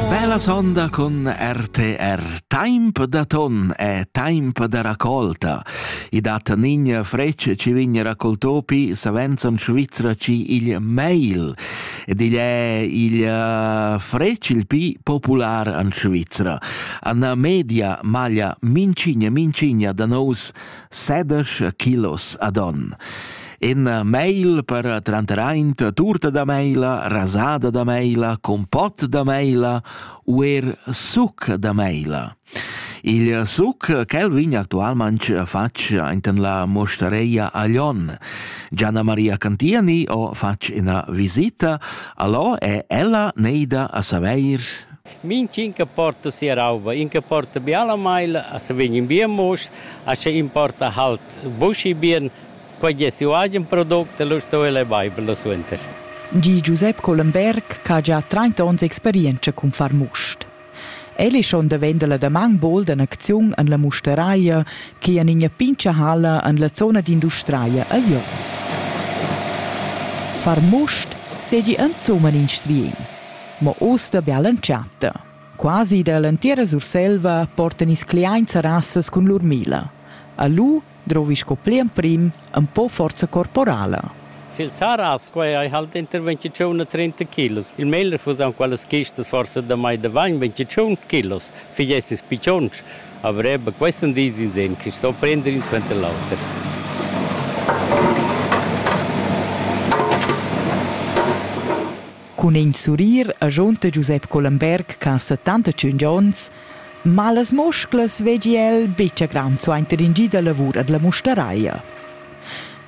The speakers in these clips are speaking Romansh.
Bellas onda con RTR. Temp da ton è temp da raccolta. I dat nigna frecce ci vigna raccoltopi savenz an Svizzera ci il mail. Ed igl è il eh, fretg il pi popular an Svizzera. An media maglia mincigna mincigna da nous sedisch kilos ad on. In mail per tranteraint turta da meila, rasada da meila, compot da meila u er suc da meila. Il suc, quel vegn actualmente fatg enten la mostareia Aglion. Gianna Maria Cantiani ho fatg ina visita, allò è ella neida a saveir Minch'in che porta sia rauba, in che porta biala maila, a se vegn in bien musch, a sche in porta halt buschi bien, quei gie siu agen product e lu sto el ei beiber lu suenter. Di Giusep Collenberg ch'ha gia trenta onns experientscha cun far must. El è schon davent la damaun bod en acziun en la musteraia che en ina pintga halla en la zona d'industria a Jon. Far must seigi insumma in striegn. Mo uss da bial'entschatta. Quasi dall'entira Surselva portan ils cliaints a rasas cun lur mila. A lu drovi sco pli emprim empau forza corporala. Sil Saragns quei ei halt inter vintetschun e trinta kilos. Il meglier fusan quellas chistas forsa damai davant vintetschun kilos. Figies ils piccions. Aber eben questo dis in Sinn, che sto prender in suenter l'auter. Cun in surrir agiunta Giusep Collenberg ch'ha settantatschun onns, ma las musclas veggi el betg a graun suenter in gi da lavur ad la mustaraia.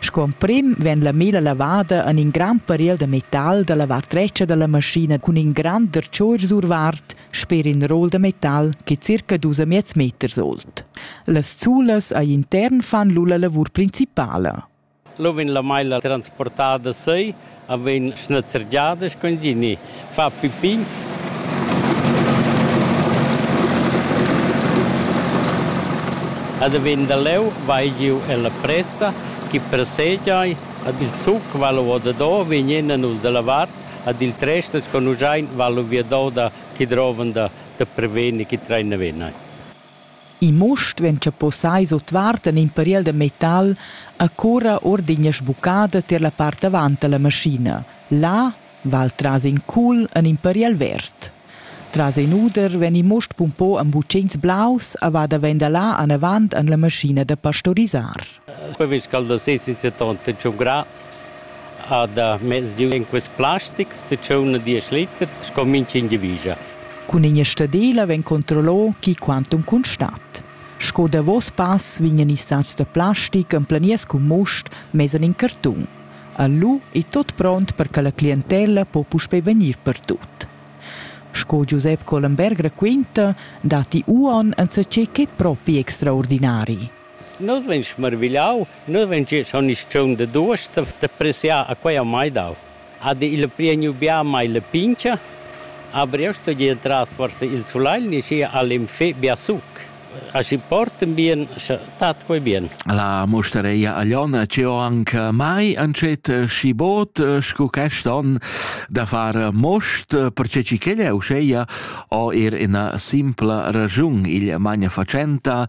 Sco emprim vegn la mela lavada en in grand pariel da metal da la vart dretga da la maschina cun in grand dertschor survart sper in rol da metal che circa dus e miez meters old. Las zulas a intern fan lu la lavur principala. Lu vegn la meila transportada seu e vegn schnezzergiada sco in gini, fa pipin. Ed vegn da leu vai giu ella pressa chi pressegia ed il suc va lu odato vegnien nus dalla vart ed ils tresters sco nus ein va lu viado da chi drovan da, da prevener chi treina venai. In must vegn chapossai sutvart en in pariel da metal e curra ord ina sbuccada tier la part davant dalla maschina. Là val tras in cul en in pariel verd. Tras in uder vegn il must pumpau en butschins blaus e va daven da là anavant en la maschina da pastorisar. Il previs ch'el do seis in seton da tschun grads ha da mez di en quests plastics da tschun a diesch liters sco mintgin giavischa. Cun in stadela vegn controllà chi quantum constat. Sco davos pass vegnan ils satgs da plastic emplaniers cun must mess en in cartun. Lu è tot pront per che la clientella po puspei vegnir pertut. Sco Giusep Collenberg raquinta, datti uonn enzatgei ch'è propi extraordinari. Nus vein smirvigliau, nus vein che schon isch tscheun de duos d'appreziar a quei a mai dau. Ha de il prieniu bia mai la pincha, a Briosto gie tras forsa il sulagl ni schi ha l'enfé bia suc. Aschi porten bien, scha tat quei bien. La mustareia agliona ci ho anche mai ancet schi bod sco quest on da far most, perche ci ch'ella uscheia ho er ina simpla ragiun, il magna facenta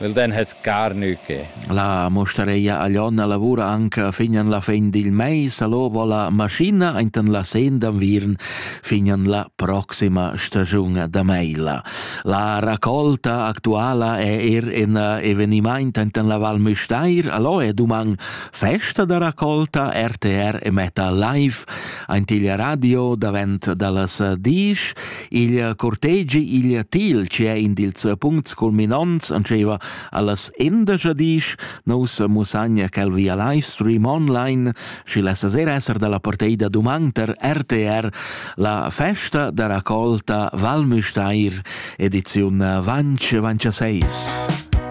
Nel den has carnü que. La mostareia Aglionna lavura anche fin an la fin dil mais all'ovo la maschina enten la sen d'anviern fin an la proxima stagiun da meila. La raccolta actuala è er in evenimaint enten la Val Müstair, allo è duman festa da raccolta RTR e Meta Live, ent il radio davent dallas disch, Il cortegi igl til, che è in dils punts culminants, antscheva allas endagia disch, nous musagna quel via live stream online, și la sasera esser dalla porteida duman per RTR la festa da raccolta Valmüsteir, ediziun Vance Vance 6.